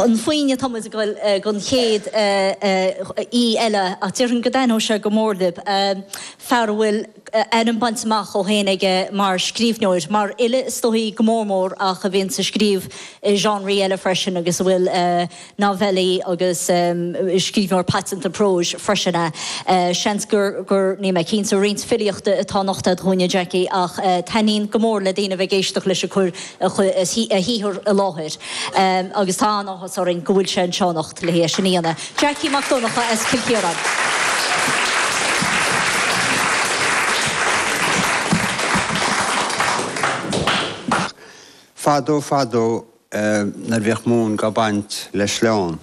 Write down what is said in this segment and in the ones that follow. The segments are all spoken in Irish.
A dhaoine, tá muid ag dul don chéad aoi eile ach déarfainn go dtaitneodh sé go mór libh, fear a bhfuil ainm bainte amach ó shin aige mar scríbhneoir, mar fhile is dóigh, go mór mór, ach a bhíonn ag scríobh i genres eile freisin agus a bhfuil novelli agus scríbhneoir paiteanta próis freisin é. Seans gur, níl mé cinnte, roinnt filíochta atá anocht a'd dúinne, Jackie, ach taitníonn go mór le daoine a bheith ag éisteacht leis ag cur a shaothar i láthair agus tá an-áthas orainn go bhfuil sé anseo anocht. Dlíthe é sin a dhéanfaidh Jackie Mac Donncha as Cill Chiaráin. Fadó fadó nuair a bhíodh móin dhá baint le sleán,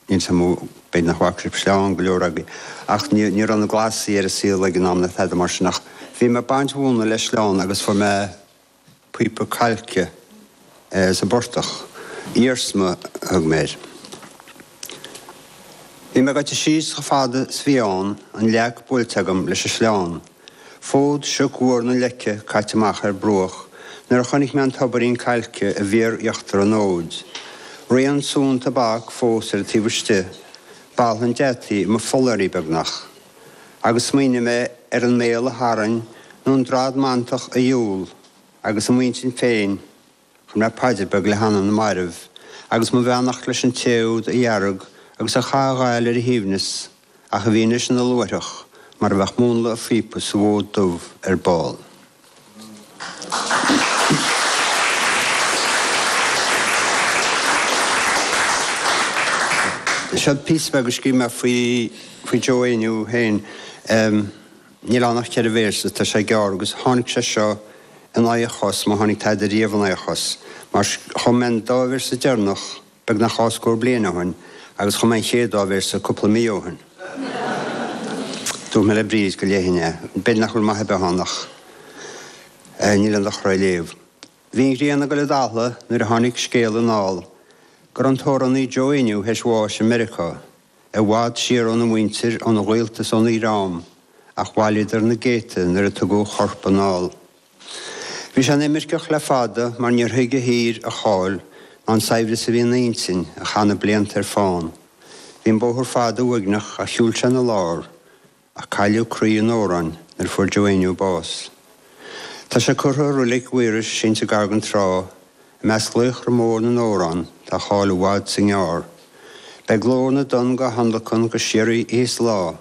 níl a fhios agam, b'fhéidir nach bhfaca sibh sleán go leor agaibh, ach ní raibh na Glasaigh ar an saol ag an am, nó tada mar sin, ach bhí mé ag baint mhóna le sleán agus fuair mé. píopa cailce sa bportach. Iarsma a thug mé air. Bhí mé ag dul síos chomh fada is a bhí ann, an leac buailte agam leis an sleán. Fód siocfhuar na leice caite amach ar bruach nuair a chonaic mé an dúidín cailce i bhfíor-íochtar an fhóid. Rian sú an tobac fós ar an taobh istigh. Baladh an deataigh i mo phollairí beagnach. agus smaoinigh mé ar an mbéal a tharraing nó an drad mantach a dhiúl agus i m'intinn féin chuir mé paidir bheag le hanam na marbh agus mo bheannacht leis an té úd a dhearg agus a chaith a ghail ar a shuaimhneas ach a bhí anois ina luaithreach mar a bheadh múnla a phíopa sa bhfód dubh ar ball. Seo píosa beag a scríobh mé faoi Joe Éinniú féin. Níl ann ach ceithre véarsa, tá sé gearr, agus tháinig sé seo in aghaidh a chos, má tháinig tada riamh in aghaidh a chos, mar chum mé an dá véarsa deireanach, Beagnach dhá scór bliain ó shin, agus chum mé an chéad dá véarsa cúpla mí ó shin. Dúirt mé le Bríd go léifinn é. B'fhéidir nach bhfuil maith ar bith ann ach níl aon dochar é a léamh. Bhí an ghrian ag dul i dtalamh nuair a tháinig scéal anall go raibh an t-amhránaí Joe Éinniú théis bháis i Meiriceá. I bhfad siar óna mhuintir, óna ghaolta is óna dhream, ach bhailíodar ina gcéadta nuair a tugadh a chorp anall. Bhí sé ina imirceach le fada mar níor thuig a thír a cháil ná an saibhreas a bhí ina intinn a chaith na blianta ar fán. Bhí an bóthar fada uaigneach a shiúil sé ina lár ach cailleadh croí an amhráin nuair a fuair Joe Éinniú bás. Tá sé curtha i Reilig Mhaorais sínte gar don trá, i measc laochra mór na n-amhrán tá a cháil i bhfad 's i ngearr. Beidh glór na dtonn dá thionlacan go síoraí oíche 's lá.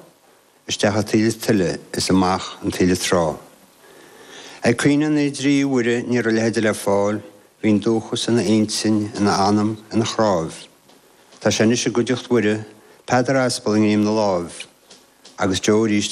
isteach an taoille tuile is amach an taoille trá. Ag caoineadh na dtrí Mhuire ní raibh a leithide le fáil, bhí an dúchas ina intinn, ina anam, ina chnámh. Tá sé anois i gcuideacht Mhuire, Peadar Aspal i ngreim ina láimh, agus Joe arís.